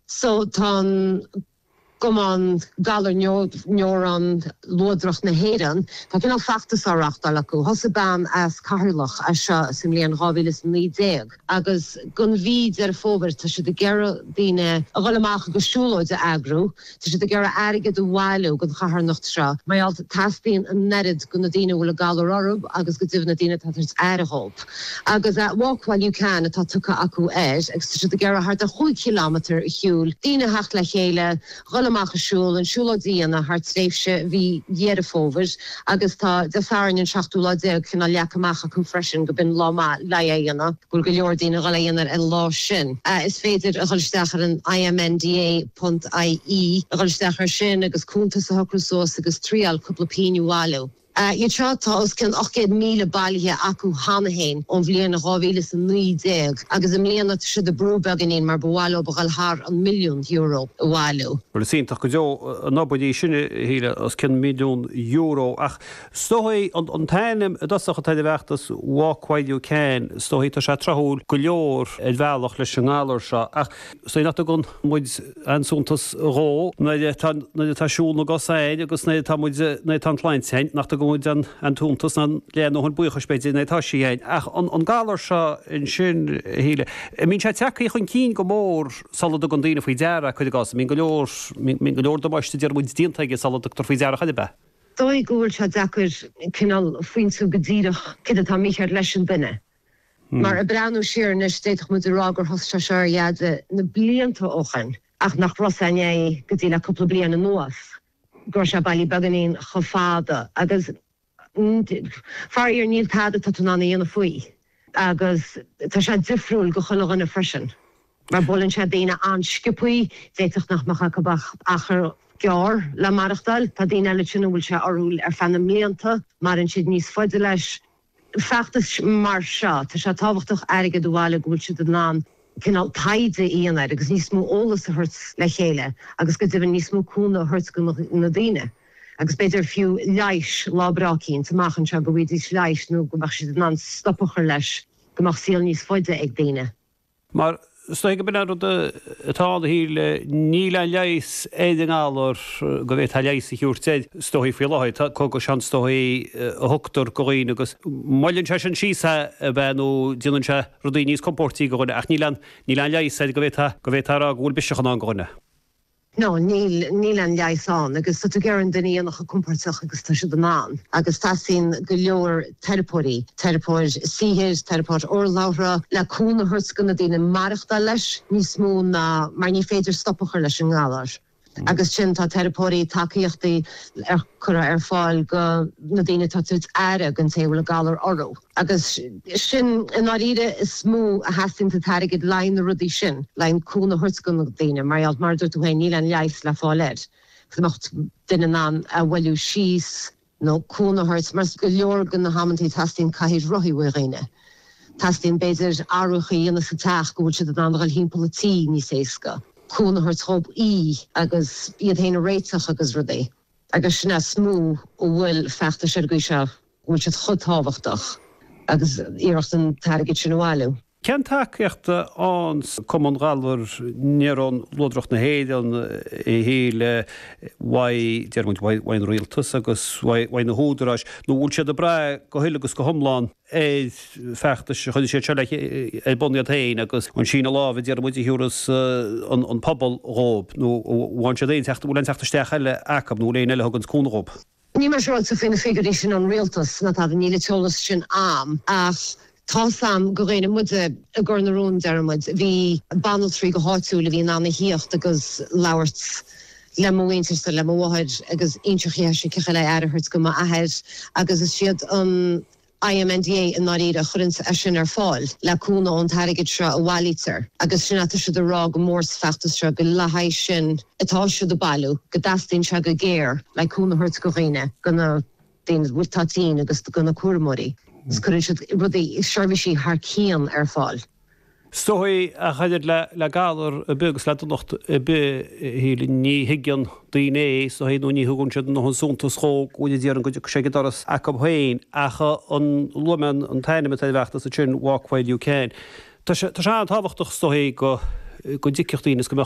So tá an Cumann Galar Néarón Luadrach na hÉireann, tá cineál feachtas á reáchtáil acu. Thosaigh bean as Ceatharlach é seo sa mbliain 2019 agus gon mhí Deireadh Fómhair tá siad ag iarraidh daoine a dhul amach agus siúlóid a eagrú. Tá siad ag iarraidh airgead a bhailiú don charthanacht seo. Mar gheall, teastaíonn an oiread go na daoine a bhfuil an galar orthu agus go deimhin na daoine atá ag tabhairt aire dhóibh. Agus Walk While You Can atá tugtha acu air agus tá siad ag iarraidh thart ar chúig chileámatar a shiúil, daoine a theacht le chéile, dhul amach ag siúl, an siúlóid a dhéanamh thar tréimhse mhí Dheireadh Fómhair agus tá Dé Sathairn an seachtú lá déag cineál leagtha amach acu freisin go b'in lá maith le é a dhéanamh. Bhfuil go leor daoine ag dhul é dhéanamh ar an lá sin. Is féidir a dhul isteach ar an IMNDA. ie a dhul isteach ar sin agus cúntas a shocrú suas agus triáil cúpla pínn a bhailiú. Go dtí seo tá os cionn 800,000 bailithe acu cheana fhéin ón bhliain 2019 agus i mbliana tá siad ag brú beagainín mar ba mhaith leo a dhul thar an milliún euro a bhailiú. Bhuel is iontach go deo an obair í sin a Shíle, os cionn milliún euro ach is dóigh an t-ainm i dtosach atá ar an bhfeachtas Walk While You Can is dóigh tá sé tráthúil go leor ar bhealach leis an ngalar seo ach Cé nach dtugann muid aon suntas dhó nuair atá siúl na gcosa a'inn agus nuair atá muid, nuair atá an tsláinte a'inn, nach dtugann muid an tsuntas di nó an buíochas b'fhéidir nuair atá sí a'inn. Ach an galar seo ansin a Shíle, an mbíonn sé tagthaí chun cinn go mór sula dtugann daoine faoi deara, cuir i gcás, an mbíonn go leor, an mbíonn go leor damáiste déarfaidh muid déanta aige sula dtugtar faoi deara ar chor ar bith. Is dóigh go bhfuil sé deacair cineál pointiú go díreach céard atá mícheart leis an duine. Mar ag breathnú siar anois d'fhéadfadh muid a rá gur thosaigh sé seo ar dheaide na blianta ó shin ach nach raibh sé soiléir go dtí le cúpla bliain anuas go raibh sé bailí beagáinín chomh fada agus faraor níl tada atá tú in ann a dhéanamh faoi agus tá sé difriúil go chuile dhuine freisin mar buaileann sé daoine an-sciopaí, d'fhéadfadh nach mbeadh acu ach achar gearr le maireachtáil, tá daoine eile ansin a bhfuil sé orthu ar feadh na mblianta, maireann siad níos faide leis. feachtas mar seo, tá sé tábhachtach airgead a bhailiú go bhfuil siad in ann cineál taighde a dhéanamh agus níos mó eolas a thabhairt le chéile agus go deimhin níos mó cúnamh a thabhairt go na daoine agus b'fhéidir fiú leigheas lá breá eicínt amach anseo go bhfaighidís leigheas nó go mbeadh siad in ann stop a chur leis go mbeadh saol níos faide ag daoine. Mar is dóigh go b'in an rud atá ann a Shíle, níl aon leigheas ar an ngalar go bhféadfá leigheas a thabhairt air is dóigh faoi láthair. Tá cógais ann is dóigh a thugtar go dhaoine agus moilleann sé sin síos é b'fhéidir nó déanann sé rudaí níos compóirtí go dhuine ach níl aon, níl aon leigheas air go bhféadfá a rá go bhfuil biseach i ndán go dhuine. No, níl, níl aon leigheas ann agus tá tú ag iarraidh an duine a dhéanamh chomh compóirteach agus tá siad in ann agus teastaíonn go leor teiripeoirí, teiripeoir saothair, teiripeoir urlabhra le cúnamh a thabhairt go na daoine maireachtáil leis níos mó ná mar ní féidir stop a chur leis an ngalar agus sin tá teiripeoirí, tacaíochtaí curtha ar fáil go na daoine atá ag tabhairt aire go an té a bhfuil an galar orthu. Agus sin, i ndáiríre, is mó a theastaíonn an t-airgead, le haghaidh na rudaí sin, le haghaidh an cúnamh a thabhairt go na daoine, mar gheall, mar a dúirt tú féin, níl aon leigheas le fáil air. Dá mbeadh duine in ann a mhoilliú síos nó cúnamh a thabhairt, mar go leor de na h-amantaí teastaíonn cathaoir rothaí ó dhaoine, teastaíonn b'fhéidir athruithe a dhéanamh sa teach go bhfuil siad in ann a dhul thimpeall an tí níos éasca, cúnamh a thabhairt dhóib ithe agus iad féin a réiteach agus rudaí. agus sin is mó a bhfuil feachtais ar an gcaoi seo go bhfuil siad chomh tábhachtach agus iarracht an t-airgead sin a bhailiú. Cén tacaíocht a fhaigheanns an Cumann Galar Néarón Luadrach na hÉireann a Shíle, uaidh, déarfaidh muid, uaidh an Rialtas agus uaidh na húdaráis nó bhfuil siad ag brath go huile agus go hiomlán ar fheachtais a chuir siad seo ar bun iad féin agus an síneadh lámh déarfaidh muid a thiúras an pobal dhóib nó an bhfaigheann siad aon teacht, an bhfuil aon teacht isteach eile acu nó bhfuil éinne eile a thuganns cúnamh dhóib. Níl mé siúráilte faoi na figiúirí sin ón rialtas, má tá, níl an t-eolas sin a'am, ach tá 's a'm go dhúinne muide i gCor na Rón, deireann muid, bhí banaltraí go háitiúil a bhí in ann a thíocht agus labhairt, le mo mhuintir 's le mo mháthair agus inseacht dhi cén chaoi le aire a thabhairt go m'athair agus is iad an IMNDA i ndáiríre a chuireann é sin ar fáil le cúnamh ón t-airgead seo a bhailítear agus sin atá siad a rá go mór sa feachtas seo gur le haghaidh sin atá siad ag bailiú go dteastaíonn sé go géar le cúnamh a thabhairt go dhaoine go daoine a bhfuil, atá tinn agus do na cúramóirí is cuireann siad rudaí, seirbhísí thar cionn ar fáil. Is dóichí ach an oiread le galar ar bith agus le donacht ar bith, a Shíle. Ní thuigeann daoine é, is dóichí, nó ní thugann siad aon suntas dhó go bhuel, déarfainn, go dtaga sé go doras acu féin. Ach luaigh mé an t-ainm atá ar an bhfeachtas ansin, Walk While You Can. Tá sé an-tábhachtach, is dóichí, go dtuigfeadh daoine is go mbeadh